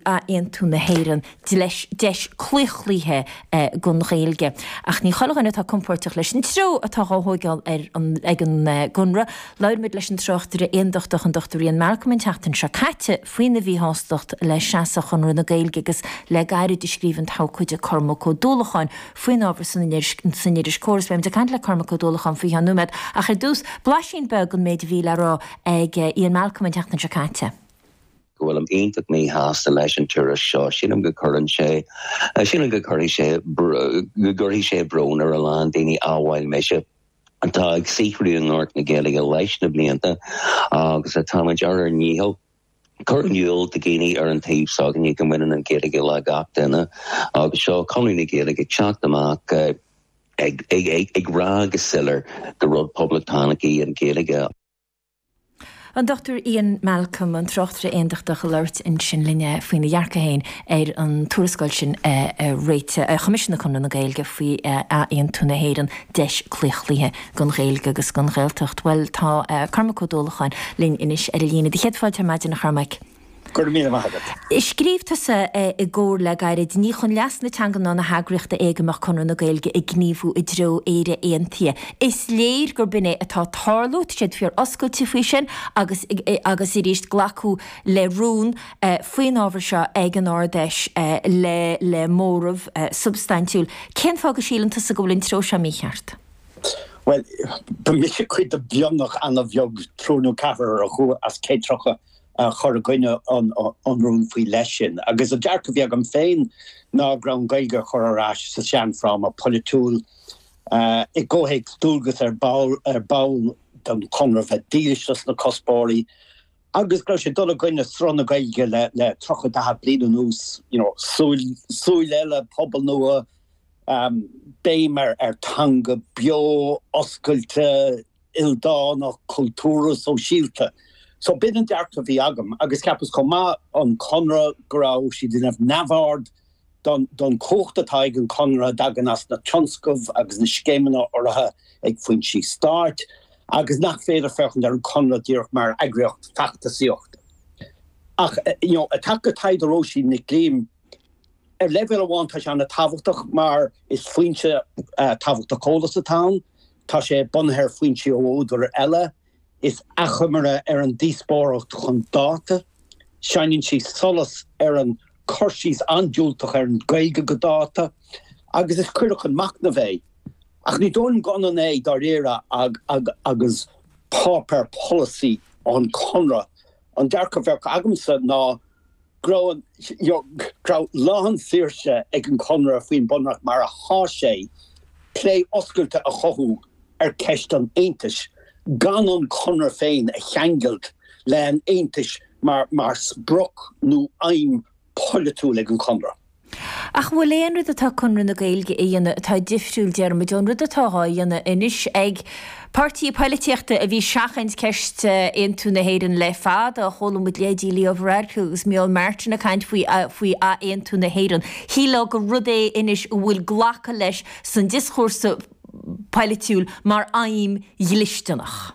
Athaontú na hÉireann, dleis, deis claochlaithe don Ghaeilge. Ach ní chuile dhuine atá compoirteach leis an treo atá dhá thóigeáil ag an gConradh. Labhair muid leis an tráchtaire aondachtach an Dr Ian Malcolm an tseachtain seo caite faoina mhíshástacht le seasamh Chonradh na Gaeilge agus le gairid scríobh an t-abhcóide Cormac Ó Dúlacháin faoin ábhar san iris Comhar. Beidh muid ag caint le Cormac Ó Dúlacháin faoi cheann nóiméid ach ar dtús, blaisín beag den méid a bhí le rá ag Ian Malcolm an tseachtain seo caite. go bhfuilim iontach míshásta leis an tuairisc seo. Sílim go gcuireann sé, sílim go gcuirfidh sé, go gcuirfidh sé brón ar a lán daoine, amhail mise, atá ag saothrú i ngort na Gaeilge leis na blianta agus atáimid ar ár ndícheall cur in iúl do dhaoine ar an taobh s'againne go mbaineann an Ghaeilge le gach duine agus seo Conradh na Gaeilge ag teacht amach ag rá go soiléir gur rud poblachtánach í an Ghaeilge. An Dr Ian Malcolm, an tráchtaire Aondachtach, ag labhairt ansin linn faoina dhearcadh féin ar an tuarascáil sin a choimisiúnaigh Conradh na Gaeilge faoi athaontú na hÉireann, Deis Claochlaithe don Ghaeilge agus don Ghaeltacht. Bhuel, tá Cormac Ó Dúlacháin linn anois ar an líne. Tá céad fáilte ar maidin, a Chormaic. Go raibh míle maith agat. Scríobh tusa i gComhar le gairid, ní chun leas na teanga ná na heagraíochta é go mbeadh Conradh na Gaeilge ag gníomhú i dtreo Éire Aontaithe. Is léir gur b'in é atá ag tarlú, tá siad fíor oscailte faoi sin agus agus arís glacadh le rún faoin ábhar seo ag an Ard Fheis le le móramh substaintiúil. Cén fáth go síleann tusa go bhfuil an treo seo mícheart? Bhuel, ba mise cuid de mhionlach ana-bheag, triúr nó ceathrar a chuaigh as céad tríocha a chuir i gcoinne an rúin faoi leith sin, agus an dearcadh a bhí agam féin ná go raibh an Ghaeilge á cur ar ais sa seanfhráma polaitiúil i gcomhthéacs dualgas ar baill don Chonradh bheith dílis dos na cuspóirí agus go raibh sé ag dul i gcoinne sruth na Gaeilge le tríocha daichead bliain anuas, you know, Súil Eile, pobal nua, béim ar theanga beo, oscailte. ildánach cultúrtha sóisialta. So b'in an dearcadh a bhí agam agus cheapas chomh maith an Conradh go raibh siad ag déanamh neamhaird don chumhacht atá ag an Chonradh a thagann as na tionscaimh agus na scéimeanna urraithe ag foinsí stáit agus nach féidir féachaint ar an Chonradh díreach mar eagraíocht feachtasaíochta. Ach you know i dtaca le taighde Róisín Nic Liam ar leibhéal amháin tá sé an-tábhachtach mar is foinse tábhachtach eolas atá ann Tá sé bunaithe ar foinsí ó údair eile. Is achoimre ar an díospóireacht chun dáta. Shineann sí solas ar an cur síos an-diúltach ar an Ghaeilge go dáta agus is cuireadh chun machnaimh é. Ach ní dóigh liom gur ionann é dáiríre agus páipéar polasaí ón Chonradh. An dearcadh a bheadh agamsa ná go raibh an, you know, go raibh lán saoirse ag an Chonradh faoin Bunreacht mar a sheas sé, plé oscailte a chothú ar cheist an Aontais gan an Conradh féin a cheangailt le an Aontais mar, mar sprioc nó aidhm polaitiúil ag an Chonradh. Ach an bhfuil aon rud atá Conradh na Gaeilge a dhéanamh atá difriúil déarfainn ón rud atá dhá dhéanamh anois ag páirtí poilitíochta a bhí seachaint ceist aontú na hÉireann le fada? Chuala muid leithéidí Leo Varadkar agus Micheál Martin ag caint faoi faoi ath-aontú na hÉireann. Shílfeá gur rud é anois a bhfuil glactha leis san dioschúrsa poilitiúil mar aidhm dhlisteanach.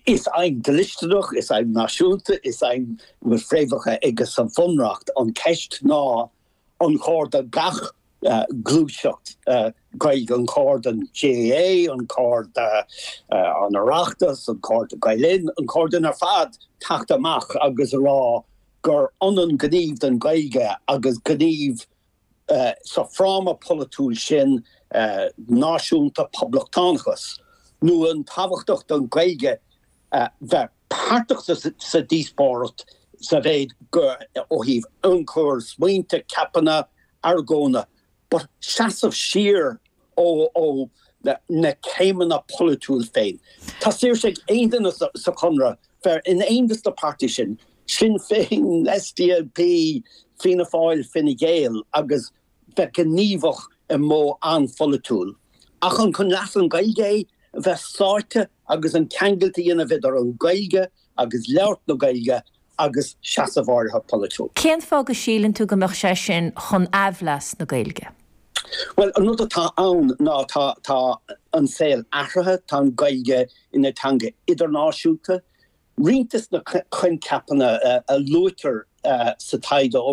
Is aidhm dhlisteanach, is aidhm náisiúnta, is aidhm a bhfuil fréamhacha aici sa Bhunreacht an cheist ná an cóir do gach gluaiseacht Gaeilge, an cóir don GAA, an cóir don Oireachtas, an cóir do Gael Linn, an cóir dúinn ar fad teacht amach agus a rá gur ionann gníomh don Ghaeilge agus gníomh Sa fráma polaitiúil sin, náisiúnta, poblachtánachas, nó an tábhachtach don Ghaeilge bheith páirteach sa díospóireacht sa mhéid go ó thaobh ionchuir, smaointe, ceapanna, argóintí, but seasamh siar ó na céimeanna polaitiúil féin. Tá saoirse ag aon duine sa Chonradh bheith in éineacht le na páirtithe sin, Sinn Féin, SDLP, Fianna Fáil, Fine Gael, agus bheith gníomhach i mód an-pholaitiúil. Ach an chun leas an Ghaeilge é a bheith sáite agus an ceangailt a dhéanamh idir an Ghaeilge, agus labhairt na Gaeilge agus seasamh áirithe polaitiúil. Cén fáth go síleann tú go mbeadh sé sin chun aimhleas na Gaeilge? Bhuel, an rud atá ann ná tá an saol athraithe, tá an Ghaeilge ina teanga idirnáisiúnta. Roinnt de na coincheapanna a luaitear sa taighde ó